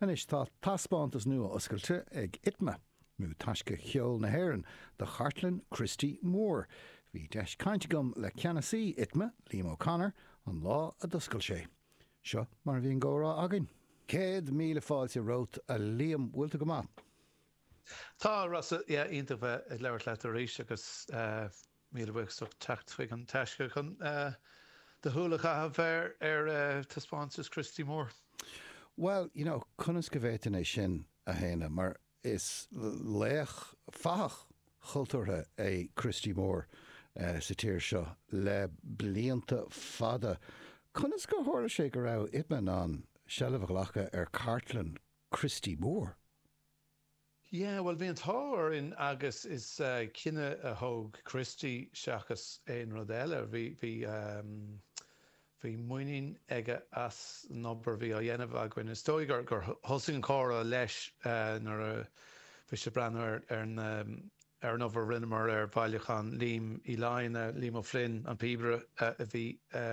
Anois tá taispeántas nua oscailte ag ITMA, nó Taisce Cheol na hÉireann, do chartlann Christy Moore. Bhí deis caint agam le ceannasaí ITMA, Liam O'Connor, an lá a d'oscail sé. Seo mar a bhí an comhrá againn. Céad míle fáilte romhat, a Liam. Bhfuil tú go maith? Tá, a Rossa. Yeah, iontach bheith ag labhairt leat arís agus eh. Míle buíochas as teacht chuig an taisce chun do shúil a chaitheamh ar thaispeántas Christy Moore. Bhuel, you know, conas go bhféadfainn é sin a shéanadh mar is laoch fathach chultúrtha é Christy Moore sa tír seo le blianta fada. Conas gur tharla sé go raibh ITMA in ann seilbh a ghlacadh ar chartlann Christy Moore? Yeah, bhuel, bhí an t-ádh orainn agus is cinneadh a thóg Christy seachas aon rud eile. Bhí, bhí muinín aige as an obair a bhí á dhéanamh againn. Is dóigh gur thosaigh an comhrá leis nuair a bhí sé ag breathnú ar, ar na, ar an obair a rinneamar ar bhailiúchán Liam Uí Fhloinn, Liam O'Flynn, an píobaire a bhí, a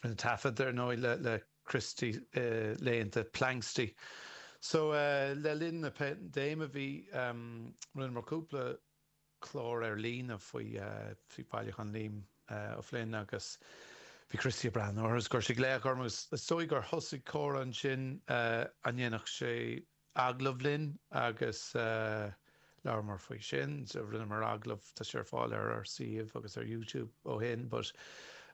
rinne taifead, ar ndóigh, le, le. Christy, laethanta Planxty. So, le linn na paindéime bhí, rinneamar cúpla clár ar líne faoi Bhailiúchán Liam O'Flynn agus bhí Christy ag breathnú orthu agus chuir sé glaoch orm agus is dóigh gur thosaigh comhrá ansin a ndéanfadh sé, agallamh linn agus labhramar faoi sin. Rinneamar agallamh, tá sé ar fáil ar ár suíomh agus ar YouTube ó shin, but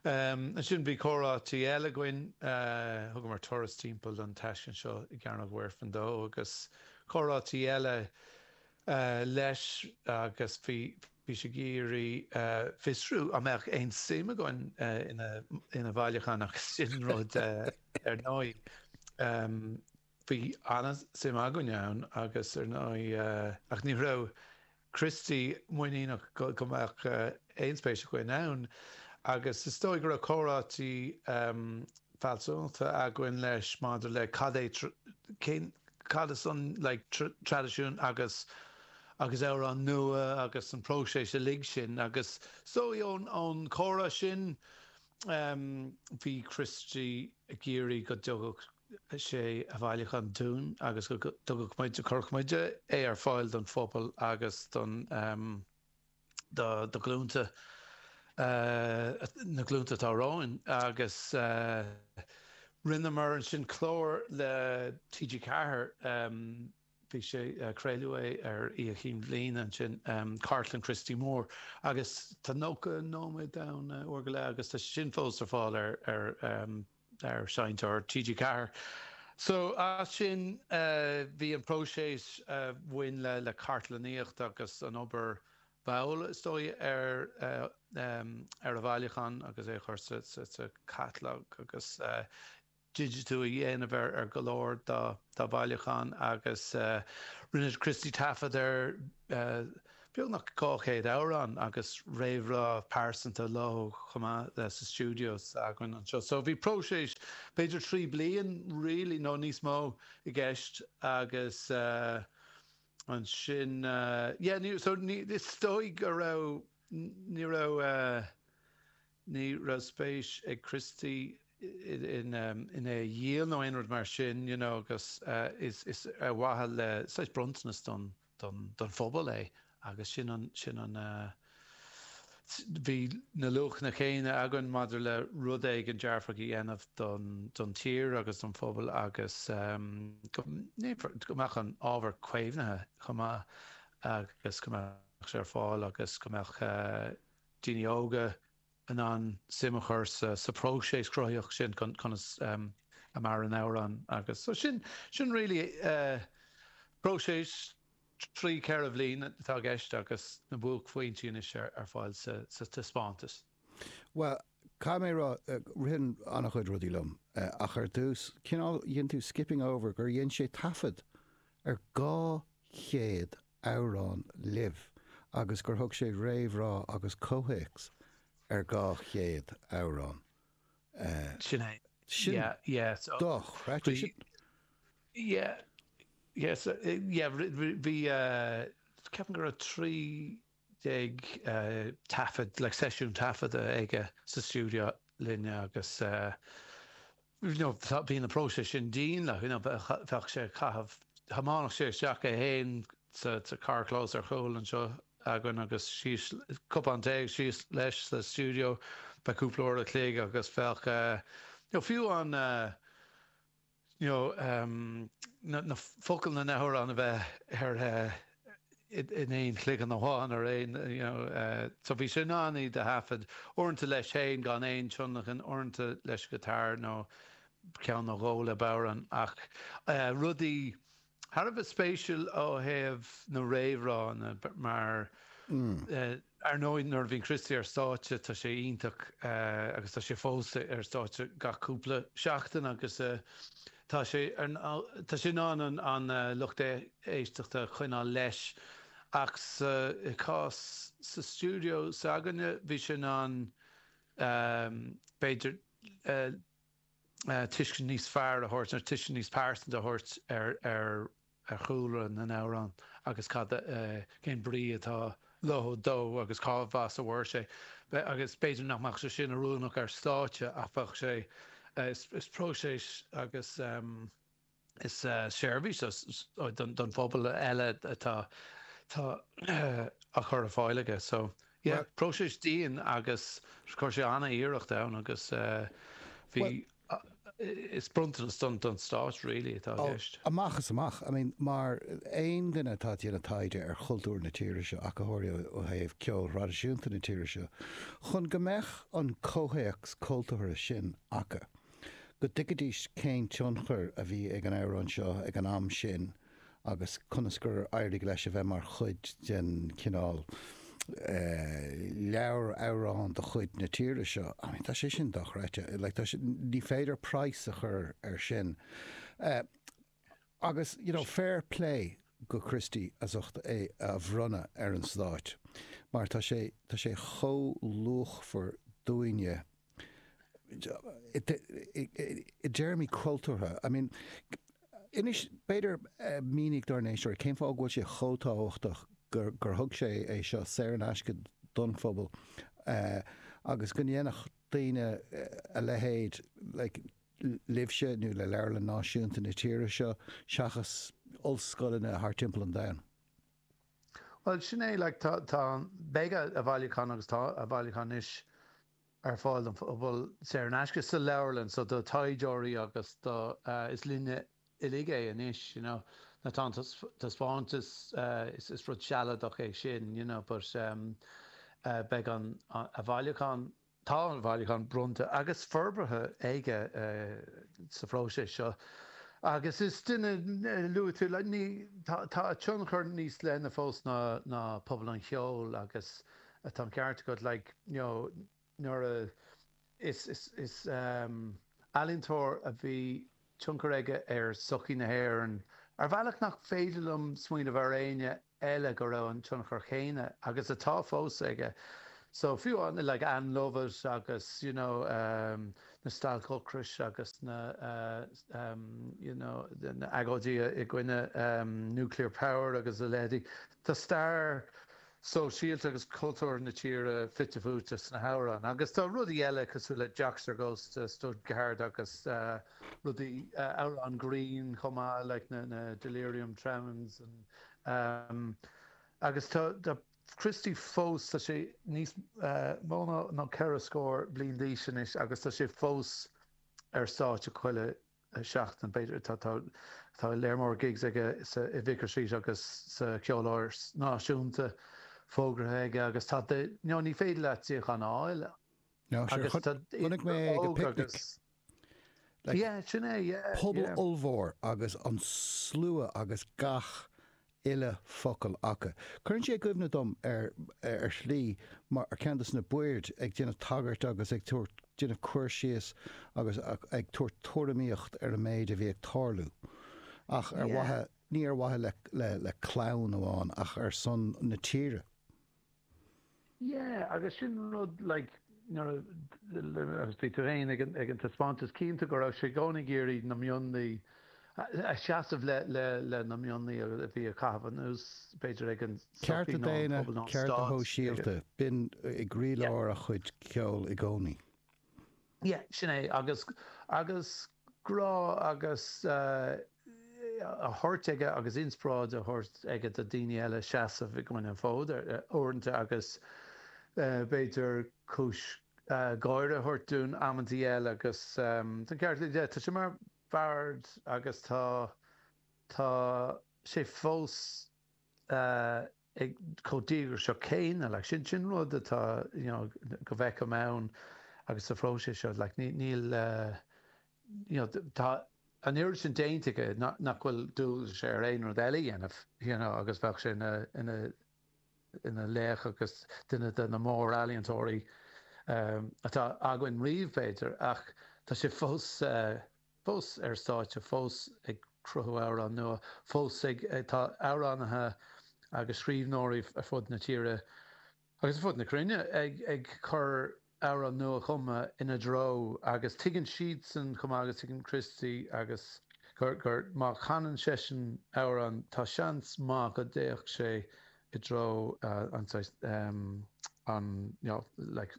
ansin bhí comhráite eile againn, thugamar turas timpeall an taisclann seo i gCearnóg Mhuirfean dó agus comhráite eile leis agus bhí bhí sé ag iarraidh fiosrú an mbeadh aon suim againn ina bhailiúchán agus sin rud ar ndóigh. Bhí an-suim againn ann agus ar ndóigh, ach ní raibh Christy muiníneach go mbeadh aon spéis againn ann agus is dóigh go raibh comhráite fealsúnachta againn leis maidir le cad é, cén, cad is an like traidisiún agus agus amhráin nua agus an próiseas uilig sin agus is dóigh ón chomhrá sin, bhí Christy ag iarraidh go dtabharfadh. sé a bhailiúchán dúinn agus go dtabharfadh muid, chuirfeadh muid, é ar fáil don phobal agus don, do ghlúnta, na glúnta atá romhainn agus rinneamar ansin clár le TG4, bhí sé, craoladh é ar Oíche Chinn Bhliana ansin, Cartlann Christy Moore agus tá 90 nóiméad ann, uair go leith agus tá sé sin fós ar fáil ar, ar. ar Sheinnteoir TG4. So as sin bhí an próiseas a bhain le cartlannaíocht agus an obair mhall is dóigh ar ar a bhailiúchán agus é a chur sa chatalóg agus digitiú a dhéanamh ar ar go leor dá dá bhailiúchán agus rinne Christy taifead ar beagnach 200 amhrán agus réamhrá pearsanta leo chomh maith sa stiúideo s'againn anseo. So bhí próiseas b'fhéidir trí bliain really nó níos mó i gceist agus eh ansin eh yeah ní so ní is dóigh go raibh ní raibh eh ní raibh spéis ag Christy i in em in é a dhíol nó aon rud mar sin you know agus eh is is ar mhaithe le saghas bronntanas don don phobal é agus sin an, sin an eh. bhí na luachanna céanna againn maidir le rud éigin dearfach a dhéanamh don, don tír agus don phobal agus em. go ndéanfar, go mbeadh an ábhar caomhnaithe chomh maith agus go mbeadh sé ar fáil agus go mbeadh eh. daoine óga, in ann suim a chur sa próiseas cruthaitheach sin, conas a maireann amhrán agus so sin, sin really próiseas trí ceithre bhliain atá i gceist agus na buaicphointí anois ar fáil sa taispeántas. Bhuel, caithfidh mé a rá, ritheann an-chuid rudaí liom ach ar dtús, cineál, dhein tú skipping over gur dhein sé taifead ar 200 amhrán libh agus gur thug sé réamhrá agus comhthéacs ar dhá chéad amhrán. Sin é. Sin dochreidte. Sin. Yes. Yeah. Bhí, ceapaim go raibh trí déag taifead le seisiún taifeadta aige sa stiúideo linne agus. Bhí na próisis sin dian le fuinneamh a bheadh sé ag caitheamh. Thiomáineadh sé isteach é féin sa carrchlós ar chúl anseo againn agus síos cupán tae agus síos leis sa stiúideo. Bheadh cúpla uair a' chloig agus bheadh fiú an na focail na n-amhrán a bheith ar in aon chloigeann amháin ar aon you know so bhí sé in ann iad a thaifead uaireanta leis féin gan aon tionlacan, uaireanta leis an guitar nó ceann nó dhó le bodhrán ach rudaí thar a bheith spéisiúil ó thaobh na réamhrá, na mar. Ar ndóigh, nuair a bhíonn Christy ar stáitse, tá sé iontach agus tá sé fós ar stáitse gach cúpla seachtain agus tá sé, tá sé in ann an lucht éisteachta a choinneáil leis ach sa chás sa stiúideo s'againne, bhí sé in ann b'fhéidir, tuiscint níos fearr a thabhairt nó tuiscint níos pearsanta a thabhairt ar chúlra na n-amhrán agus cad, cén brí atá leo, dó agus cad ina thaobh a mhair sé. Agus b'fhéidir nach mbeadh sé sin oiriúnach ar stáitse ach bheadh sé, is próiseas agus. Is seirbhís don phobal eile atá á chur ar fáil aige. So yeah, próiseas dian agus chuir sé an-iarracht ann agus bhí, is bronntanas don Stát really atá i gceist. Amach is amach. I mean d'aon duine atá ag déanamh taighde ar chultúr na tíre seo, ach go háirithe ó thaobh ceol thraidisiúnta na tíre seo, chun go mbeadh an comhthéacs cultúrtha sin acu, go dtuigfidís cén tionchar a bhí ag an amhrán seo ag an am sin agus conas gur éirigh leis a bheith mar chuid den chineál leabhar amhrán de chuid na tíre seo. I mean, tá sé sin dochreidte. Like, tá sé, ní féidir praghas a chur ar sin. Eh, agus, you know, fair play do Christy as ucht é a bhronnadh ar an Stát, mar tá sé, tá sé chomh luachmhar dúinne. i dtéarmaí cultúrtha. I mean, inis, b'fhéidir, mínigh dár n-éisteoirí cén fáth go bhfuil sé chomh tábhachtach gur, gur thug sé é seo saor in aisce don phobal agus go ndéanfadh daoine a leithéid, like, libhse nó le Leabharlann Náisiúnta na tíre seo seachas ollscoileanna thar timpeall an domhain. Bhuel, sin é, like, tá, beidh a bhailiúchán, agus tá a bhailiúchán anois, ar fáil don phobal, saor in aisce, sa leabharlann, so do thaighdeoirí agus do, is linne uilig é anois, you know, nó an taispeántas, is rud sealadach é sin, you know, but, beidh an, a bhailiúchán, Tá a bhailiúchán bronnta agus forbartha aige sa phróiseas seo agus is duine luaitear le Tá a tionchar níos leithne fós ná pobal an cheoil agus tá an ceart agat like you know nuair a is ealaíontóir a bhí tionchar aige ar sochaí na hÉireann ar bhealach nach féidir liom smaoineamh ar éinne eile go raibh an tionchar céanna, agus atá fós, aige. So, fiú amháin like Ann Lovett agus you know na stailc ocrais agus na you know na agóidí i gcoinne nuclear power agus a leithéidí, tá stair, sóisialta agus cultúrtha na tíre fite fuaite sna hamhráin. Agus tá rudaí eile cosúil le Joxer Goes to Stuttgart agus rudaí, amhráin grinn chomh maith like na na Delirium Tremens and Agus tá tá Christy fós, tá sé níos mó ná ceithre scór bliain d'aois anois agus tá sé fós ar stáitse chuile. seachtain, b'fhéidir. Tá léar mór gigs aige i Vicar Street agus sa Cheoláras Náisiúnta fógraithe aige agus tá de, nó ní féidir leat suíochán a fháil agus tá idir óg agus. Like, yeah, sin é, yeah. Pobal yeah. ollmhór agus an slua agus gach uile focal aca. Cuireann sé i gcuimhne dom ar ar shlí mar ceann dos na baird ag déanamh tagairt agus ag tabhairt déanamh cur síos agus ag tabhairt tuairimíocht ar an méid a bhí ag tarlú. Ach ar mhaithe, ní ar mhaithe le le clann amháin ach ar son na tíre. Yeah, agus sin rud, like, nuair a, agus bhí tú féin ag an, ag an taispeántas, cinnte go raibh sé i gcónaí ag iarraidh na mionlaigh, a seasamh le, le, le na mionlaigh a bhí á gcaitheamh anuas, b'fhéidir ag an Cearta daonna, cearta sóisialta, b'in i gcroílár a chuid ceoil i gcónaí. Yeah, sin é. Agus, agus grá agus eh, a thabhairt aige agus inspioráid a thabhairt aige do daoine eile seasamh i gcoinne, an fód ar, eh, uaireanta agus eh, b'fhéidir cúis eh, gáire a thabhairt dúinn amantaí eile agus ehm, tá an ceart aige, tá sé mar bhard agus tá, tá sé fós eh, ag chomh díograiseach céanna. Like, sin, sin rud atá, you know, go bhfeicim ann agus sa phróiseas seo. Like, ní, níl, you know, tá an oiread sin déanta aige nach, nach bhfuil dualgas air aon rud eile a dhéanamh, you know, agus bheadh sé ina, ina, ina laoch agus duine de na mórealaíontóirí atá againn riamh, b'fhéidir, ach tá sé fós. fós ar stáitse, fós ag cruthú amhrán nua, fós ag. Tá amhránaithe agus scríbhneoirí ar fud na tíre agus ar fud na cruinne ag cur amhrán nua-chumtha ina threo agus tuigeann siadsan chomh maith agus tuigeann Christy agus gur má chanann seisean amhrán tá seans maith go dtéann sé i dtreo an saghas an like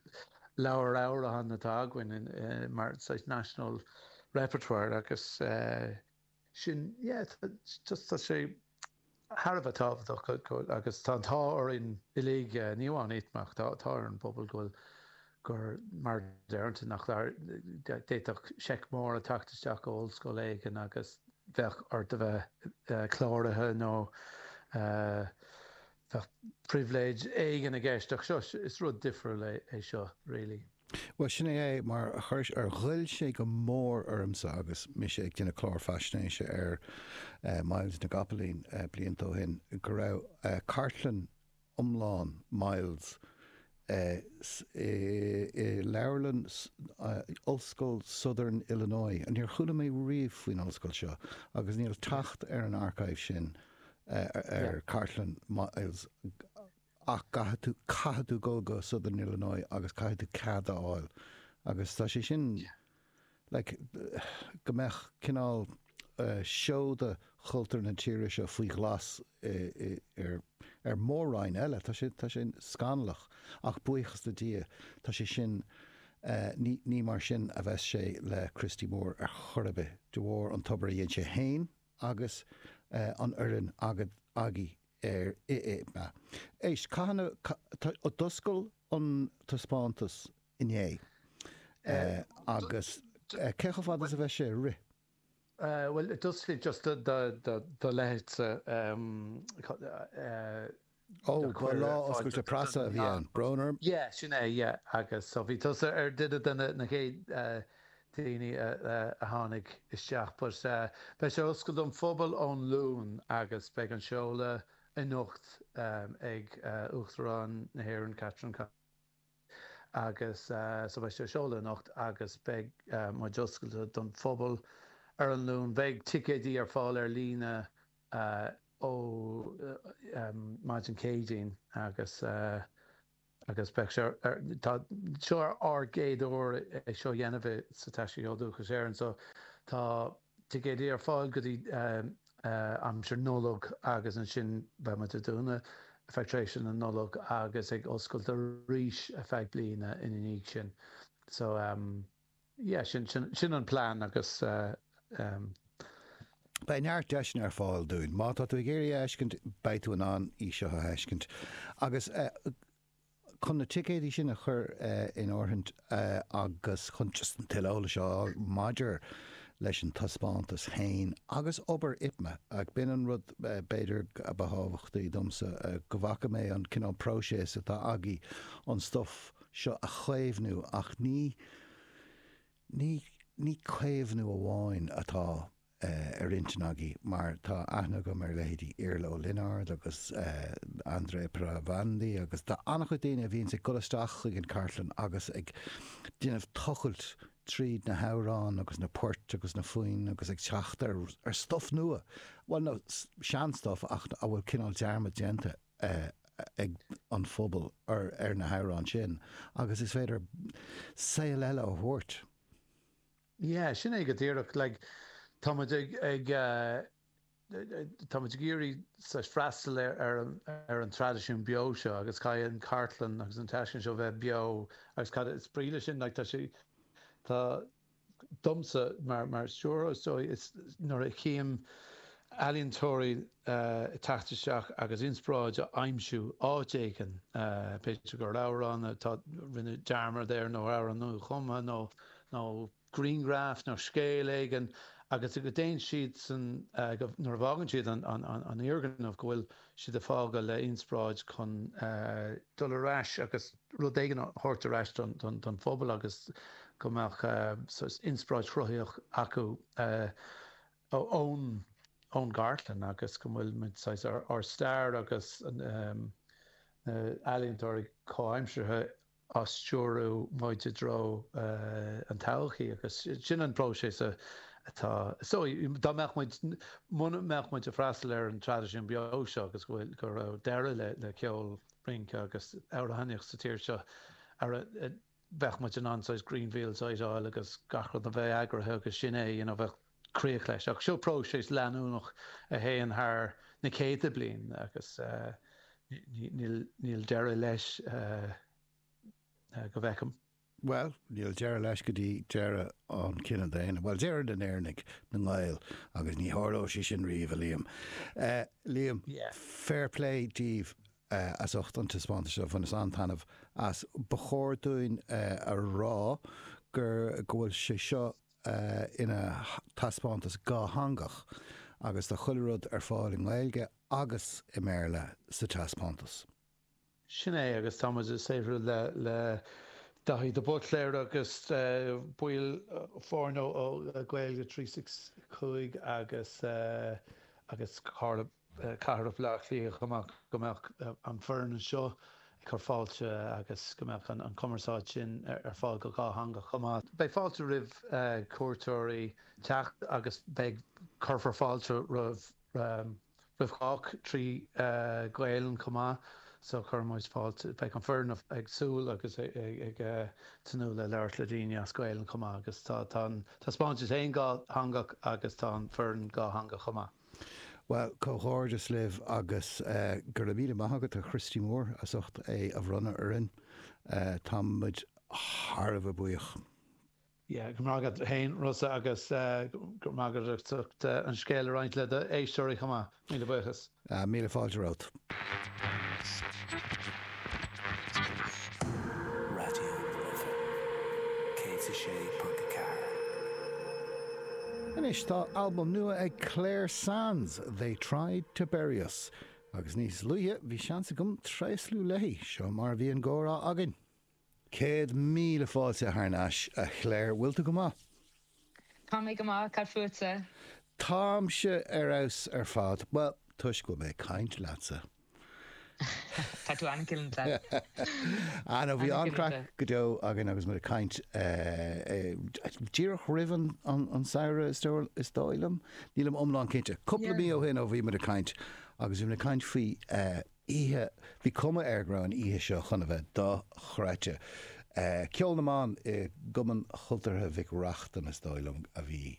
leabhar amhrán atá againn mar saghas national repertoire agus sin yeah just tá sé thar a bheith tábhachtach go agus tá an t-ádh orainn uilig ní hamháin ITMA ach tá tá ar an bpobal go bhfuil gur imní éigin nach d'fhéadfadh seic mór a theacht isteach ó ollscoil éigin agus bheadh ort a bheith cláraithe nó bheadh pribhléid éigin i gceist ach seo, is rud difriúil é seo really. Bhuel sin é é, mar chuir, ghoill sé go mór ormsa agus mise ag déanamh clár faisnéise ar Myles na gCopaleen blianta ó shin, go raibh cartlann, iomlán Myles, e, i leabharlann, e, Ollscoil Southern Illinois. Níor chuala mé riamh faoin ollscoil seo agus níl teacht ar an archive sin ar chartlann Myles ach caithfidh tú, caithfidh tú dul go Southern Illinois agus caithfidh tú cead a fháil agus tá sé sin. like, go mbeadh cineál seoda chultúr na tíre seo faoi ghlas ar mhór-roinn eile. Tá sé, tá sé scannalach ach buíochas le Dia tá sé sin, ní, ní mar sin a bheas sé le Christy Moore ar chor ar bith, de bharr an obair a dhéan sé fhéin agus an fhoireann agat, agaibh ar ITMA. Éist, caithfidh na, d'oscail an taispeántas inné. Agus cé chomh fada is a bheidh sé ag rith? Bhuel, it does fit just do leithéidse eh. Ó, ba lá oscailte preasa a bhí ann. Brón orm. Yeah, sin é, yeah. Agus so bhí tusa ar duine de na chéad daoine a tháinig isteach. But beidh sé oscailte don phobal ón Luan agus beidh an seoladh anocht ag Uachtarán na hÉireann, Catherine. agus so beidh sé seolta anocht agus beidh muid oscailte don phobal ar an Luan. Beidh ticéidí ar fáil ar líne ó maidin Céadaoin agus agus beidh so tá seo ár gcéad uair é seo a dhéanamh i sa Taisce Cheol Dúchais Éireann so tá. ticéidí ar fáil go dtí aimsir Nollag agus ansin beidh muid ar dúnadh ar feadh tréimhse na Nollag agus ag oscailt arís ar feadh bliana ina dhiaidh sin. So yeah sin sin an plean agus eh. Beidh neart deiseanna ar fáil dúinn. Má tá tú ag iarraidh a fheiscint beidh tú in ann í seo a fheiscint agus eh. Chun na ticéidí sin a chur in áirithint agus chun an tuilleadh eolais a fháil maidir leis an taispeántas féin agus obair ITMA, b'in an rud b'fhéidir a ba thábhachtaí domsa, go bhfaca mé an cineál próiseas atá agaibh an stuif seo a chaomhnú, ach ní caomhnú amháin atá eh, ar intinn againn mar tá aithne agam ar leithéidí Iarla Ó Lionáird agus eh, Andrea Palandri agus tá an-chuid daoine a bhíonns ag dul isteach chuig an chartlann agus ag déanamh tochailt tríd na hamhráin agus na poirt agus na foinn agus ag teacht ar, ar stuff nua, bhuel no, sean-stuff ach a bhfuil cineál dearmad déanta eh, ag an phobal ar, ar na hamhráin sin agus is féidir saol eile a thabhairt. Yeah, sin é go díreach. Like, tá muid ag, ag eh, tá muid ag iarraidh saghas freastal ar, ar an, ar an traidisiún beo seo agus caithfidh an chartlann agus an taisclann seo bheith beo agus cad is brí leis sin, like, tá sé, tá, domsa mar, mar stiúrthóir is dóigh, is nuair a tchím ealaíontóirí eh ag teacht isteach agus inspioráid a aimsiú áit éigin, eh b'fhéidir gur amhrán atá ann, rinneadh dearmad air nó amhrán nuachumtha nó. nó grianghraif nó scéal éigin agus go dtéann siad ansan, nuair a bhfágann siad an fhoirgneamh, go bhfuil siad ag fágáil le ionspráid chun. dul ar ais agus rud éigin a thabhairt ar ais don phobal agus go mbeadh saghas ionspráid chruthaíoch acu ón gcartlann agus go bhfuil muid saghas ár stair agus na ealaíontóirí comhaimseartha á stiúriú muid i dtreo an todhchaí agus sin an próiseas atá is dóigh, dá mbeadh muid, muna mbeadh muid ag freastal ar an traidisiún beo seo agus go bhfuil, go raibh deireadh le ceol, rince agus amhránaíocht sa tír seo, ara bheadh muid in ann saghas Grenfell a thógáil agus gach rud a bheith eagraithe agus sin é, you know, bheadh. críoch leis. Ach seo próiseas leanúnach a théann thar na céadta bliain agus níl deireadh leis go bhfeicim. Bhuel, níl deireadh leis go dtí deireadh an chine daonna. Bhuel, deireadh na nÉireannaigh, na nGael, agus ní tharlóidh sé sin riamh, a Liam. Liam, fair play daoibh as ucht an taispeántas seo, bhaineas an-taitneamh as. Ba chóir dúinn a rá gur, go bhfuil sé seo ina taispeántas dhátheangach agus tá chuile rud ar fáil i nGaeilge agus i mBéarla sa taispeántas. Sin é agus tá muid ag saothrú le le Daithí de Buitléir agus baill foirne Gaeilge trí six cúig agus agus Carla Cathrach Bhleá Cliath chomh maith, go mbeadh an foireann anseo ag cur fáilte agus go mbeadh an cumarsáid sin ar fáil go dhátheangach chomh maith. Beidh fáilte roimh chuairteoirí teacht agus beidh, cuirfear fáilte roimh roimh chách trí Ghaelainn chomh maith so cuireann muid fáilte, beidh an foireann ag súil agus ag tnúth le labhairt le daoine as Gaelainn chomh maith agus tá tá an taispeántas ann dátheangach agus tá an foireann dhátheangach chomh maith. Bhuel, comhghairdeas libh agus go raibh míle maith agat agus do Christy Moore as ucht é a bhronnadh orainn. Tá muid thar a bheith buíoch. Yeah, go raibh maith agat féin, Rossa, agus go raibh maith agat as ucht an scéal a roinnt le do éisteoirí chomh maith. Míle buíochas. Míle fáilte romhat. Anois tá albam nua ag Clare Sands, They Tried To Bury Us, agus níos luaithe bhí seans agam tréaslú léi. Seo mar a bhí an gcomhrá againn. Céad míle fáilte thar n-ais, a Chláir. Bhfuil tú go maith? Tá mé go maith. Cad fútsa? Táimse ar fheabhas ar fad. Bhuel, toisc go bhfuil mé ag caint leatsa. Tá tú an-mhillte. Anó, bhí an-chraic go deo againn agus muid ag caint díreach roimh an samhradh, is dóigh liom. Nílim iomlán cinnte. Cúpla mí ó shin ó bhí muid ag caint agus bhí muid ag caint faoi oíche. Bhí cuma air go raibh an oíche seo chun a bheith dochreidte. Ceol na mban i gCumann Chultúrtha Mhic Reachtain, is dóigh liom, a bhí